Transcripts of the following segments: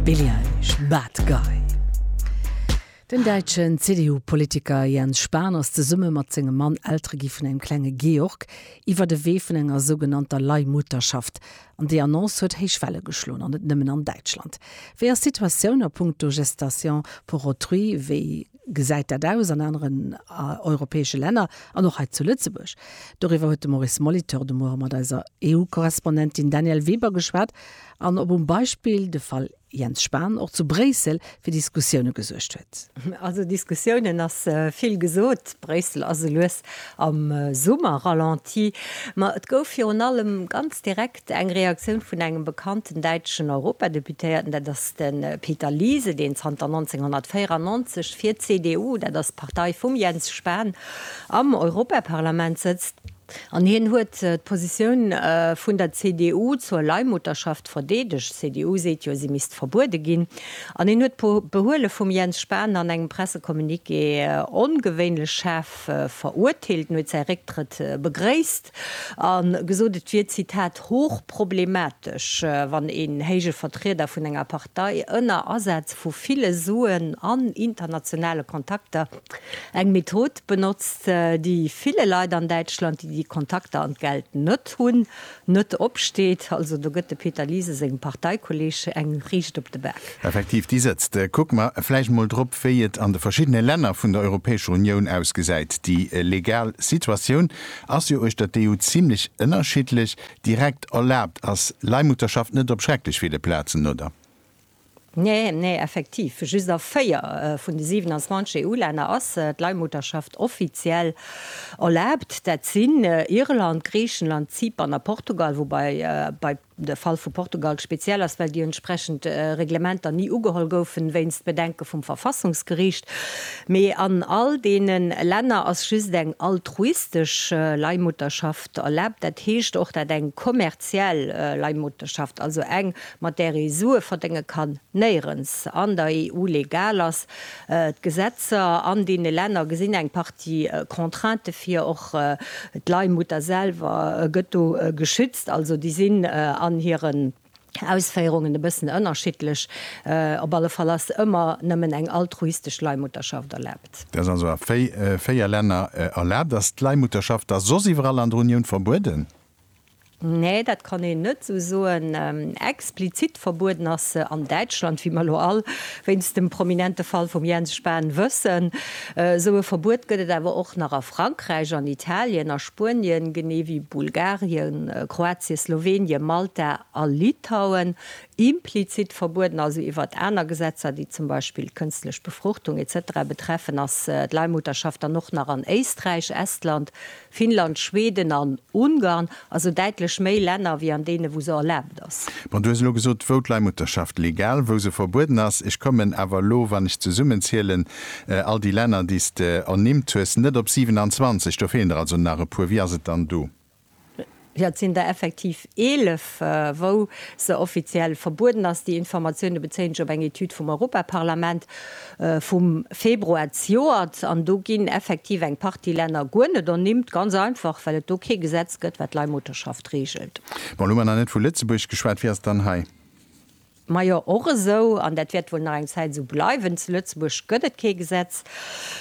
Billie Eilish, Bad Guy. Den däitschen CDU-Politiker Jens Spahn ass zesumme mat sengem Mann Eltere gi vun engem klenge Georg, iwwert e Wee vun enger sougenannter Leihmutterschaft. An déi Annonce huet héich Welle geschloen, an net nëmmen an Däitschland. Wéi ass d'Situatioun a punkto Gestation pour autrui? Wéi. gesäit dat aus an aneren europäesche Länner an och hei zu Lëtzebuerg? Doriwwer huet de Maurice Molitor de Muere mat eiser EU-Korrespondentin Danièle Weber geschwat an op um Beispill de Fall Jens Spahn och zu Bréissel fir Diskussioune gesuergt huet. Also Diskussiounen ass vill gesot. Bréissel ass elues am Summer-Ralenti. Ma et gouf virun allem ganz direkt. Eng Reaktioun vun engem bekannten däitschen Europadeputéierten, dat ass de Peter Liese, deen zanter 1994 fir d'CDU, dat ass d'Partei vum Jens Spahn, am Europaparlament sëtzt. An hien huet d'Positioun vun der CDU zur Leihmutterschaft verdeedegt. D'CDU seet jo, si misst verbuede ginn. An hien huet d'Behuele vum Jens Spahn an engem Pressecommuniqué ongewéinlech schaarf verurteelt. En huet säi Récktrëtt begréisst. A gesot, et wier, Zitat, hoch problematesch, wann een héije Vertrieder vun enger Partei ënner Asaz vu ville Suen an internationale Kontakter eng Method benotzt, déi ville Leit an Däitschland, déi déi Kontakter an d'Geld net hunn, net opsteet. Also do gëtt de Peter Liese sengem Parteikolleeg eng riicht op de Bak. Effektiv, déi sëtzt. Kucke mer vläicht mol drop, wéi et an de verschiddene Länner vun der Europäescher Unioun ausgesäit, déi legal Situatioun. Ass jo uechter d'EU zimlech ënnerschiddlech. Direkt erlaabt ass Leihmutterschaft net op schrecklech ville Plazen, oder? Nee, nee, effektiv. Just a 4 vun de 27 EU-Länner ass d'Leihmutterschaft offiziell erlaabt. Dat sinn Irland, Griichenland, Zypern a Portugal, woubai bei. De Fall vu Portugal speziell ass, well déi entsprechend Reglementer ni ugeholl goufen, wéinst Bedenke vum Verfassungsgeriicht. Mee an all deene Länner ass just eng altruistesch Leihmutterschaft erlaabt, dat heescht och dat eng kommerziell Leihmutterschaft, also eng, mat där ee Sue verdénge kann, néierens an der EU legal ass. D'Gesetzer an deene Länner gesinn eng Partie Contrainte vir, och d'Leihmutter selwer gëtt do geschützt. Also déi sinn an hiren Ausféierungen e bëssen ënnerschiddlech. Op alle Fall ass ëmmer nëmmen eng altruistesch Leihmutterschaft erlaabt. Dat ass also a véier Länner erlaabt. Ass d'Leihmutterschaft da soss iwwerall an der Unioun verbueden? Nee, dat kann een net esou soen. Explizit verbueden ass se an Däitschland, wéi mer elo all wéinst dem prominente Fall vum Jens Spahn wëssen. Esou e Verbuet gëtt et awer och nach a Frankräich, an Italien, a. Spuenien, genee wéi Bulgarien, Kroatien, Slowenien, Malta a Litauen, implizit verbueden, also iwwert aner Gesetzer, déi zum Beispill kënstlech Befruchtung etc. Betreffen ass d'Leihmutterschaft dann och nach an Éisträich, Estland, Finnland, Schweden an Ungarn, also däitlech méi Länner wéi an deene wou se erlaabt ass. Bon, du hues elo gesot, wou d'Leihmutterschaft legal, wou se verbueden ass. Ech kommen awer elo, wann ech zesummenzielen, all déi Länner, déi s de ernimmt hues, net op 27. Do feelen der also nach e puer. Wie ass et dann do? Jo, et sinn der effektiv 11, wou se offiziell verbueden ass. Déi Informatioune bezéien ech op eng Etüd vum Europaparlament, vum Februar zejoert, an do ginn effektiv eng Partie Länner guer net ernimmt, ganz einfach well et do kee Gesetz gëtt wat d'Leihmutterschaft reegelt. Bon, elo hu mer nach net vu Lëtzebuerg geschwat, wéi ass et dann hei? Majo, och esou, an dat wäert wuel nach eng Zäit esou bleiwen, zu Lëtzebuerg gëtt et kee Gesetz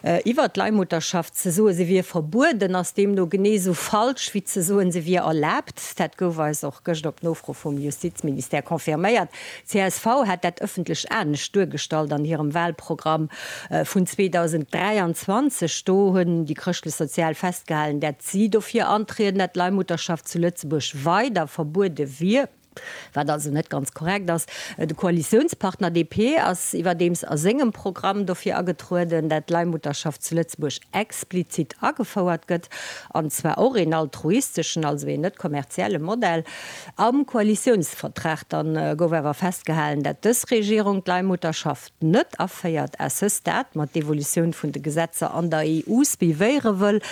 iwwert d'Leihmutterschaft. Ze soen se wier verbueden ass deemno genee esou falsch wéi ze soen se wier erlaabt. Dat gouf eis och gëscht op Nofro vum Justizministère confirméiert. Csv hat dat ëffentlech anescht duergestallt an hirem Wahlprogramm vun 2023. Do hunn déi Chrëschtlech-Sozial festgehalen, dat si dofir antrieden, dat d'Leihmutterschaft zu Lëtzebuerg weider verbuede wier, wat also net ganz korrekt ass. De Koalitiounspartner DP ass iwwerdeems a sengem Programm dofir agetrueden, dat d'Leihmutterschaft zu Lëtzebuerg explizit agefouert gëtt, an zwar och een altruisteschen, also een net kommerzielle Modell. Am Koalitiounsvertrag dann gouf awer festgehalen, dat dës Regierung d'Leihmutterschaft net aféiert à ce stade, ma d'Evolutioun vun de Gesetzer an der EU suivéiere wëll.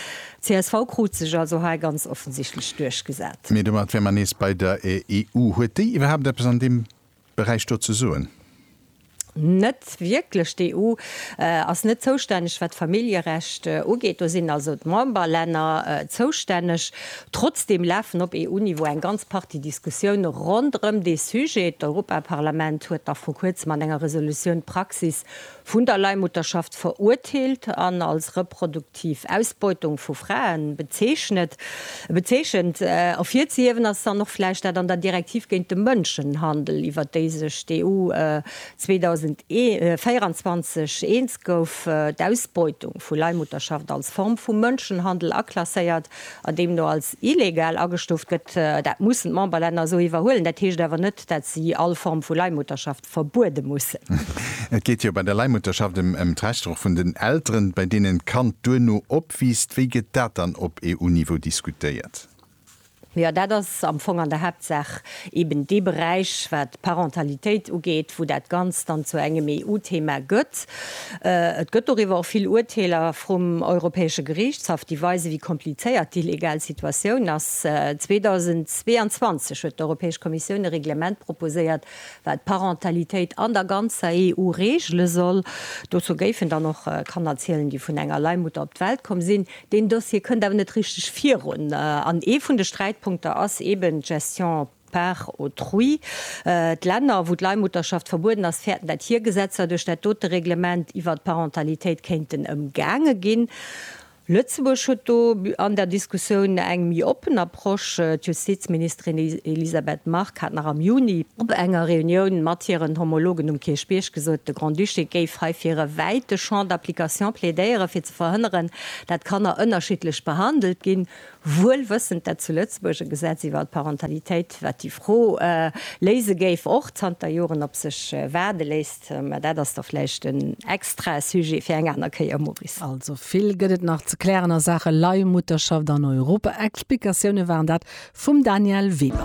Csv krut sech also hei ganz offensichtlech duerchgesat. Mee domat wäre mer nees bei der EU. Huet déi iwwerhaapt eppes an deem. Beräich do ze soen? Net wierklech. D'EU ass net zoustänneg, wat d'Familljerecht ugeet. Do sinn also d'Memberlänner zoustänneg. Trotzdeem lafen op EU-Niveau eng ganz Partie Diskussioune ronderëm dee Sujet. D'Europaparlament huet nach vru Kuerzem an enger Resolutioun d'Praxis vun der Leihmutterschaft verurteelt an als reproduktiv Ausbeutung vu Fraen bezeechnet, bezeechent. Ervirzehiewen ass dann och vläicht dat an der Direktiv géint de Mënschenhandel, iwwert déi sech d'EU 2024 eens gouf, d'Ausbeutung vu Leihmutterschaft als Form vu Mënschenhandel aklasséiert a deemno als illegal agestuuft gëtt. Dat mussen d'Memberlänner esou iwwerhuelen. Dat heescht awer net, dat si all Form vu Leihmutterschaft verbuede mussen. Et geet jo bei der Leihmutterschaft ëm d'Rechter och vun den Elteren, bei deenen d'Kand duerno opwiisst. Wéi gëtt dat dann op EU-Niveau diskutéiert? Jo, dat ass am Fong an der Haaptsaach eben dee Beräich, wat d'Parentalitéit ugeet, wou dat Ganzt dann zu engem EU-Thema gëtt. Et gëtt doriwwer och vill Urteeler vrum Europäesche Geriichtshaff, déi weisen, wéi komplizéiert déi legal Situatioun ass. 2022 huet d'Europäesch Kommissioun e Reglement proposéiert, wat d'Parentalitéit an der ganzer EU reegele soll, dozou géifen dann och Kanner zielen, déi vun enger Leihmutter op d'Welt komm sinn. Deen Dossier kënnt awer net richteg virun an ee vun de Sträitpunkter ass eben d'Gestion par autrui. D'Länner, wou d'Leihmutterschaft verbueden ass, fäerten, dat hir Gesetzer duerch dat dote Reglement iwwert d'Parentalitéit kéinten ëmgaange ginn. Lëtzebuerg huet do an der Diskussioun eng méi oppen Approche. D'Justizministerin Elisabeth Margue hat nach am Juni op enger Reunioun mat hiren Homologen um Kierchbierg gesot, de Grand-Duché géif hei fir e wäite Champ d'application plädéieren, fir ze verhënneren, dat Kanner ënnerschiddlech behandelt ginn. wuel wëssend, dat zu Lëtzebuerg e Gesetz iwwert d'Parentalitéit, wat déi Fro léise géif, och zanter Joren op sech waarde léisst. Mä dat ass da vläicht en extra Sujet fir eng aner Kéier, Maurice. Also vill gëtt et nach ze klären a Saache Leihmutterschaft an Europa. Explikatioune waren dat vum Danièle Weber.